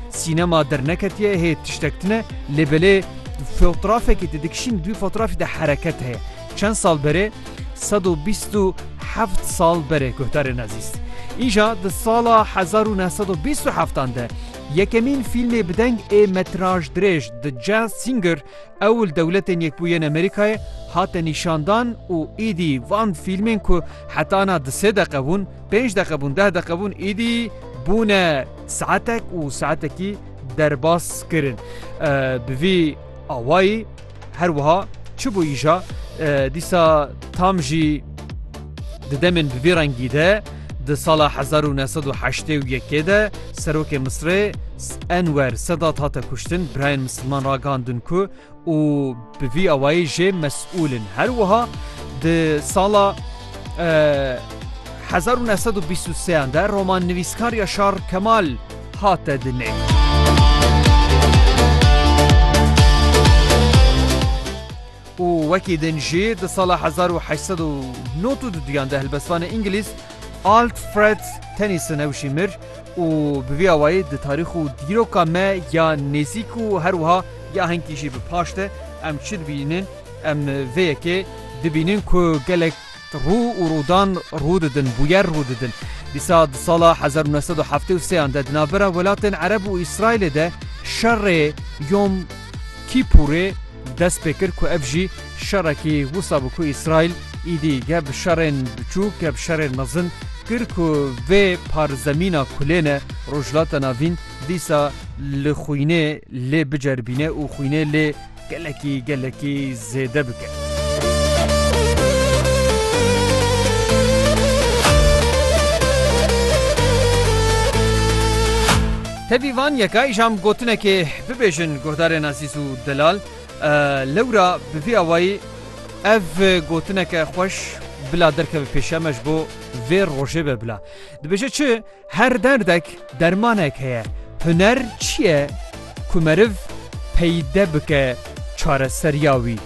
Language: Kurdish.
Sînema derneketiye hê tiştek tune lê belê fotrafekî te dikişîn dû fotrafî de hereket heye. Çend sal berê sed û bîst û heft sal berê guhdarên ezîz îja di sala hezar û neh sed û bîst û heftan de yekemîn fîlmê bideng ê metraj dirêj The Jazz Singer ew li Dewletên Yekbûyên Amerîkayê hate nîşandan û îdî van fîlmên ku heta na di sê deqe bûn, pênc deqe bûn, deh deqe bûn îdî bûne Saetek û saetekî derbas kirin. Bi vî awayî her wiha çi bû îja dîsa tam jî di demên bi vî rengî de di sala hezar û neh sed û heştê û yekê de serokê Misirê Enwer Sedat hate kuştin, birayên misilman ragihndin ku û bi vî awayî jê mesûl in. Her wiha di sala hezar û neh sed û bîst û seyan de romannivîskar Yaşar Kemal hate dinê. û wekî din jî di sala hezar û heşt sed û nod û duduyan de helbestvanê Îngilîz Alfred Tennyson ew jî mir û bi vî awayî di tarîx û dîroka me ya nêzîk û her wiha Gahînkî jî bi paş de em çi dibînin? Em vê yekê dibînin ku gelek rû û rûdan rû didin, bûyer rû didin. Dîsa di sala hezar û neh sed û heftê û sê an de di navbera welatên Ereb û Îsraîlê de şerê Yom Kîpûrê dest pê kir ku ev jî şerekî wisa bû ku Îsraîl îdî geh bi şerên biçûk geh bi şerên mezin kir ku vê parzemîna kulêne Rojhilata Navîn Dîsa li xwînê lê biceribîne û xwînê lê gelekî gelekî zêde bike. Tevî van yeka îşam gotinekê bibêjin guhdarên Azîz û Delal lewra bi vî awayî ev gotineke xweş bila derkeve pêşeme ji bo vê rojê be bila dibêje çi Her derdek dermanek heye. Huner çi ye ku meriv peyde bike çareseriya wî?